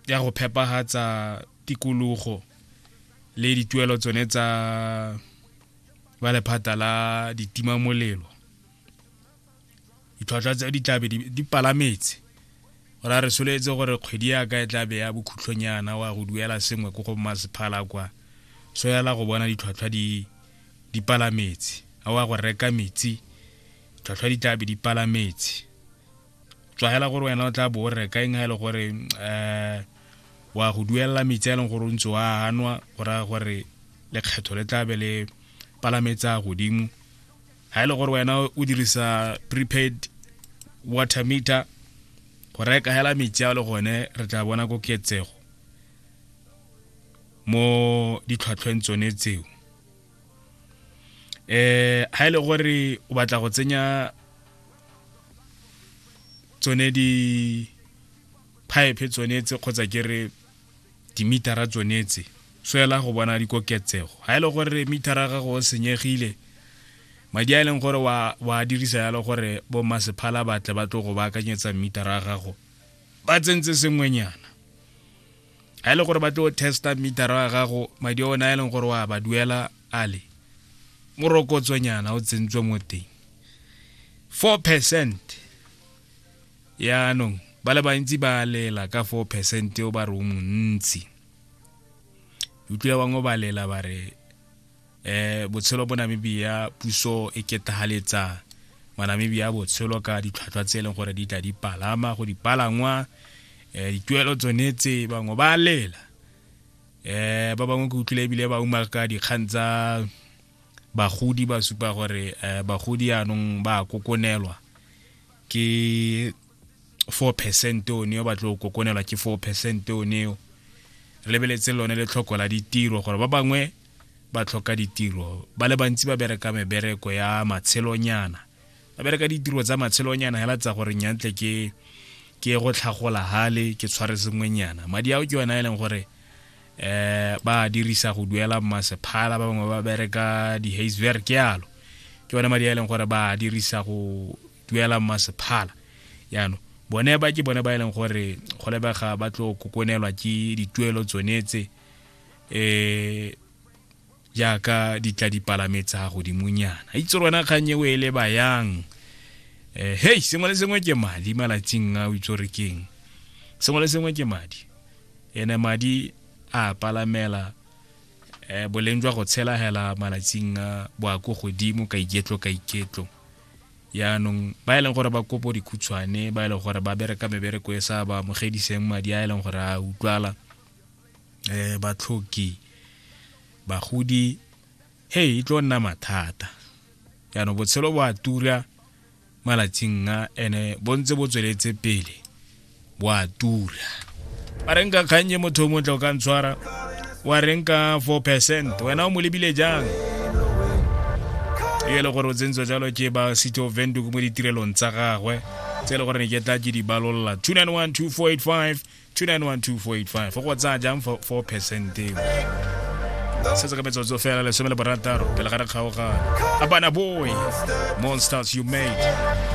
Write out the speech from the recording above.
ya go phepagatsa tikologo le dituelo tsone tsa ba lephata la ditimamolelo ditlhwatlhwa tse di tlabe di palametse gore a re soletse gore kgwedi ya ka e tlabe ya bokhutlhonyana wa go duela sengwe ko go masephala kwa so yala go bona ditlhwatlhwa di di palametse a wa go reka metsi tlhwatlhwa di tlabe di palametse tswagela gore wena o tla bo o reka eng ga e le gore um wa go duelela metsi a e leng gore o ntse o a anwa go raya gore lekgetho le tlabe le palametsa godimo ga e le gore wena o dirisa prepaid water meter go reka hela metsi a le gone re tla bona koketsego mo ditlhwatlhweng tsone tseo eh ha ile e gore o batla go tsenya tsone di pipe tsone tse kgotsa ke re dimitara tsone tse so ela go bona dikoketsego ha ile e gore mitara ga go senyegile madi a e leng gore wa wa dirisa yalo gore bo masephala batle ba tlo go ba akanyetsa mitara ga gago ba tsentse sengwenyana ga e le gore ba tlo testa meter wa gago madi one a e leng gore wa ba duela a le morokotsonyana o tsentswe mo teng four percent yaanong ba le bantsi ba lela ka four percent o ba re o montsi utlwile bangwe ba lela ba re eh botshelo bo Namibia puso e ketahaletsa manamibia botshelo ka ditlhwatlhwa tse e leng gore di tla di palama go dipalangwa eh dituelo tsone tse bangwe ba lela eh ba bangwe ke utlwile ebile ba uma ka dikgang tsa bagodi ba supa gore eh, bagodi anong ba kokonelwa ke four percent o neo ba tlo kokonelwa ke four percent o neo re lebeletse lone le tlhoko la ditiro gore ba bangwe ba tlhoka ditiro ba le bantsi ba bereka mebereko ya matshelonyana ba bereka ditiro tsa matshelonyana hela tsa gore nyantle ke ke go tlhagola hale ke tshware sengwenyana madi ao ke yona e leng gore eh ba dirisa go duela masephala ba bangwe ba bereka di-hazewerk yalo ke yone madi a e leng gore ba dirisa go duela masephala yaanong bone ba ke bone ba e leng gore go lebega ba tlo kokonelwa ke dituelo tsone tse um jaaka di tla dipalame tsa godimonyana itse rona kgang eo e le bayang um eh, hei sengwe le sengwe ke madi malatsing a o itse gore keng sengwe le sengwe ke madi ene madi a palamela um boleng jwa go tshelagela malatsing a boako godimo ka iketlo ka iketlo yaanong ba e leng gore ba kopo dikhutshwane ba e leng gore ba bereka mebereko e sa ba amogediseng madi a e leng gore a utlwala um batlhoki bagodi hey e tlo nna mathata yaanong botshelo bo a tura malatsing a ene bo ntse bo tsweletse pele wa tura ba reng ka kgannye motho o montle o ka ntshwara wa reng ka 4 percent wena o mo lebile jang e le gore o tsentswa jalo ke ba city of venduk mo ditirelong tsa gagwe tse e le gore ne ke tla ke di balolola 2912485 2912485 go tsaya jang 4 percent eo se se ka metsotso fela lesome le borataro pele ga re kgaogana abana boy monsters you made